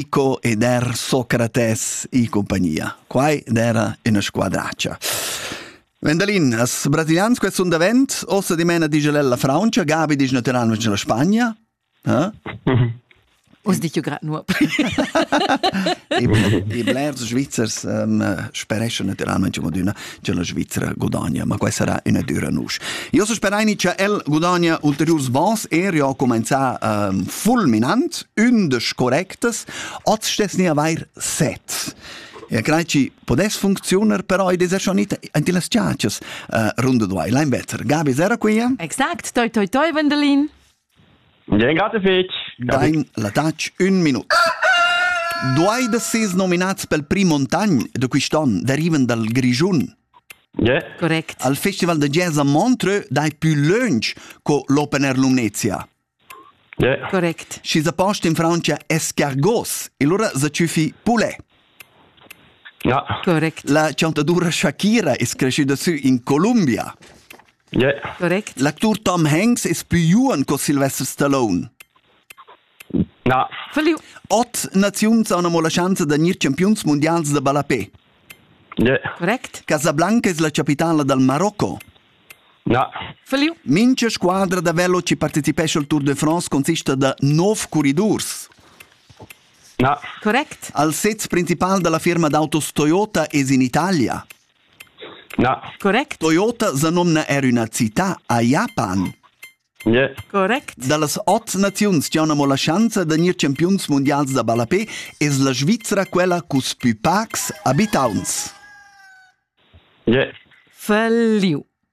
Ico ed er Socrates in compagnia. Quai era una squadracia. Vendalin, as brasilians quest sun davent, ossa dimena dice la Francia, Gabi dice naturalmente la Spagna. Eh? Us dic jo grad nuop. I blers Svizzers um, spereschan naturalmente come d'una che la Svizzera gudagna, ma quai sarà ina dura nusch. Io so speraini che el gudagna ulteriurs vans e io comenza ehm, fulminant, undisch correctes, oz stess ni avair set. Ja crei ci podes funzionar, però id es er schon it anti las ciacias uh, runde duai, lein better. Gabi, zera quia? Exact, toi toi toi, Wendelin. Ringrazio fetg. Dein l'adatg ün minut. Duai da ses nominats pel prim montagn da quist'on derivan dal Grischun? Yeah. Correct. Al Festival da Jazz a Montreux dai più lönch co l'Open Air Lumnezia. Yeah. Correct. Schi sa post in Francia escargos e lura sa tschüfi poulet. Ja. Correct. La chantadoura Shakira es creschüda sü in Columbia. Yeah. Correct. L'actur Tom Hanks es plü juon co Sylvester Stallone. Na. Verliu. Ot naziun sauna mo la schanza da gnir champiuns mundials da ballapè. Yeah. Correct. Casablanca es la capitala dal Marocco. Na. Verliu. Mincha squadra da veloci partecipescha al Tour de France consista da 9 curridurs. Na. Correct. Al sez principal da la firma d'autos Toyota es in Italia. Na. Correct. Toyota sa nomna er üna città a Japan. Yeah. Correct. Da las ot naziuns chi han amo la schanza da gnir champiuns mundials da ballapè es la Svizra quella cu's pü pacs abitauns. Yeah. Falliu.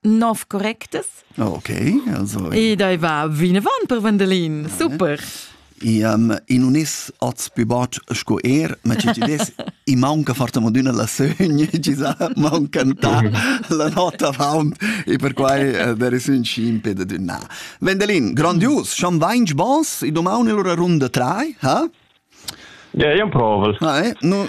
nov correctas. Ok, also. E dai va vinavant per Vandelin, super. Um, in unis oz più bot sco er, ma ci ves i manca forte moduna la sogna, ci sa manca ta la nota faun e per quai uh, der es un scimpe da dünna. Vendelin, grandios, schon vainch bons, i domani lura runda 3, ha? Ja, io provo. Ah, eh? No,